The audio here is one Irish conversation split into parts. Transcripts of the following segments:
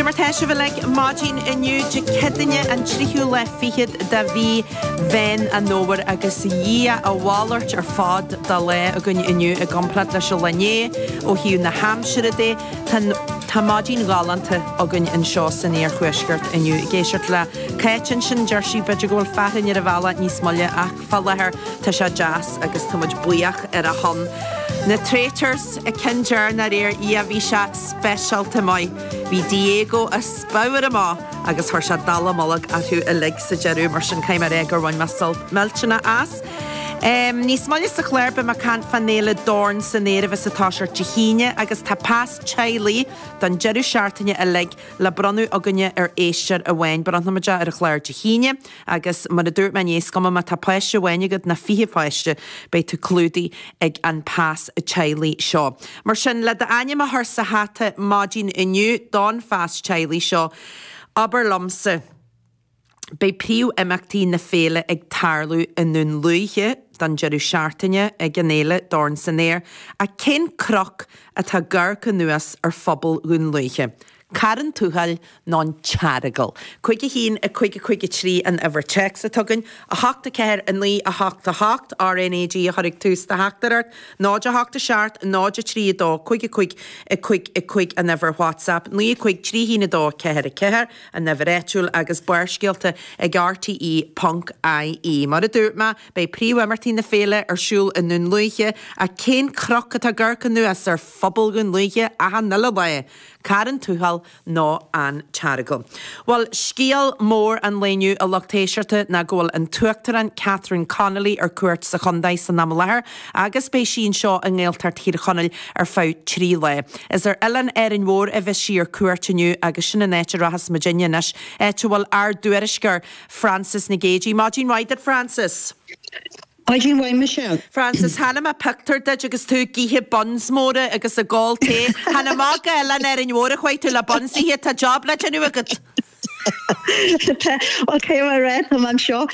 Cad é mar atá sibh uilig maidin inniu, Dé Céadaoin an tríú lá fichead de mhí Mheán Fómhair agus Dhia a mhalairt ar fad dá lá againn inniu i gcomparáid leis an lá inné ó thaobh na haimsire de. Tá maidin ghalánta againn anseo san iarthuaisceart inniu. Ag éisteacht le Cáit ansin deir sí b'fhéidir go bhfuil fearthainn ar an bhealach níos moille ach. Fá láthair tá sé deas agus tá muid buíoch ar a shon. Na Traitors, an ceann deireanach aréir, bhí sé speisialta maith. Bhí Diego á sbabhtáil amach agus chuir sé dallamullóg orthu uilig sa deireadh mar sin caithfidh mé a rá gur bhain mé sult millteanna as. Níos moille sa chláir beidh muid ag caint fán Fhéile Dorn san Aer a bheas ag toiseacht Dé hAoine agus tá pas teaghlaigh don deireadh seachtaine uilig le bronnadh againne ar éisteoir amháin. Bronnfaidh muid é ar an chlár Dé hAoine. Agus, mar a dúirt mé inné, is cuma má tá páiste amháin agat nó fiche páiste, beidh tú clúdaithe ag an pas teaghlaigh seo. Mar sin, le d'ainm a chur sa hata maidin inniu don phas teaghlaigh seo, abair liomsa, Beidh príomhimeachtaí na féile ag tarlú i nDún Lúiche don deireadh seachtaine ag an fhéile Dorn san Aer, ach cén cnoc atá ag amharc anuas ar phobal Dhún Lúiche? Carn Tuathail nó an tEaragal. Cúig a hAon, a Cúig, a Cúig a Trí an uimhir téacs ó thuaidh den teorainn, 8, 4, 9, 8, 8, RNAG a chuirfidh tús le do theachtaireacht, 0, 8, 7, 0, 3, 2, 5 a Cúig, a Cúig, a Cúig an uimhir WhatsApp, 9 a Cúig, Trí hAon, a Dó, a Ceathair, a Ceathair an uimhir áitiúil agus Barrscéalta ag rte ponc ie. Mar a dúirt mé, beidh príomhimeachtaí na féile ar siúl i nDún Lúiche ach cén cnoc atá ag amharc anuas ar phobal Dhún Lúiche achan uile lá? Carn Tuathail nó an tEaragal? Bhuel, scéal mór an lae inniu a lucht éisteachta ná go bhfuil an tUachtarán Catherine Connolly ar cuairt sa chontae san am i láthair agus beidh sí anseo i nGaeltacht Thír Chonaill ar feadh trí lá. Is ar oileán Árainn Mhór a bheas sí ar cuairt inniu agus sin an áit a rachas muidne anois, áit a bhfuil ár dtuairisceoir Frances Nic Géadaigh. Maidin mhaith duit, Frances! Maidin mhaith Michelle. Frances, chonaic mé pioctúr duit agus tú ag ithe buns móra agus ag ól tae. Chan go hOileán Árainn Mhóir a chuaigh tú le buns a ithe, tá job le déanamh agat! Tá, cé mar atá, tá mé anseo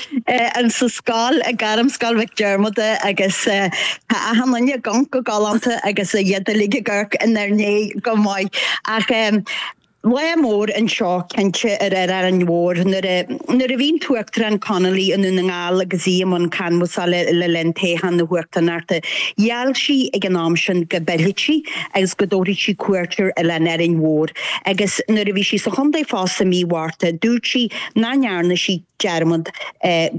insa scoil i nGairmscoil Mhic Diarmada agus tá achan duine ag amharc go galánta agus iad uilig ag amharc inár ndiaidh go maith ach em Lá mór anseo cinnte ar ar Árainn Mhór nuair a nuair a bhí an tUachtarán Connolly i nDún na nGall agus í i mbun canbhasála le linn toghchán na huachtaránachta. Gheall sí ag an am sin go bpillfidh sí agus go dtabharfadh sí cuairt ar Oileán Árainn Mhór agus nuair a bhí sí sa chontae fosta mí Mhárta dúirt sí nach ndearna sí dearmad ar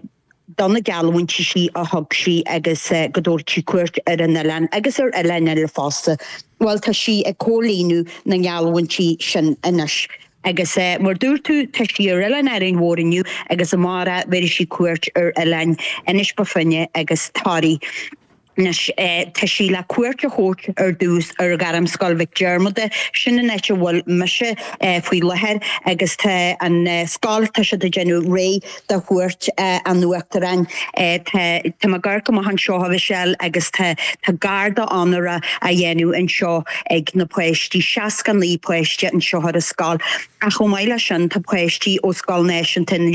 do na geallúintí sin a thug sí agus go dtabharfadh sí cuairt ar an oileán agus ar oileáin eile fosta. Bhuel, tá sí ag comhlíonadh na ngeallúintí sin anois agus mar a dúirt tú, tá sí ar Oileán Árainn Mhór inniu agus amárach bhéarfaidh sí cuairt ar oileáin Inis Bó Finne agus Toraí. Anois tá sí le cuairt a thabhairt ar dtús ar Ghairmscoil Mhic Dhiarmada, sin an áit a bhfuil mise faoi láthair, agus tá an scoil, tá siad ag déanamh réidh do chuairt an Uachtaráin. Tá tá m'amharc amach anseo, a Mhichelle, agus tá tá garda onóra á dhéanamh anseo ag na páistí, seasca naoi páiste anseo ar an scoil. Ach chomh maith leis sin, tá páistí ó Scoil Náisiúnta na.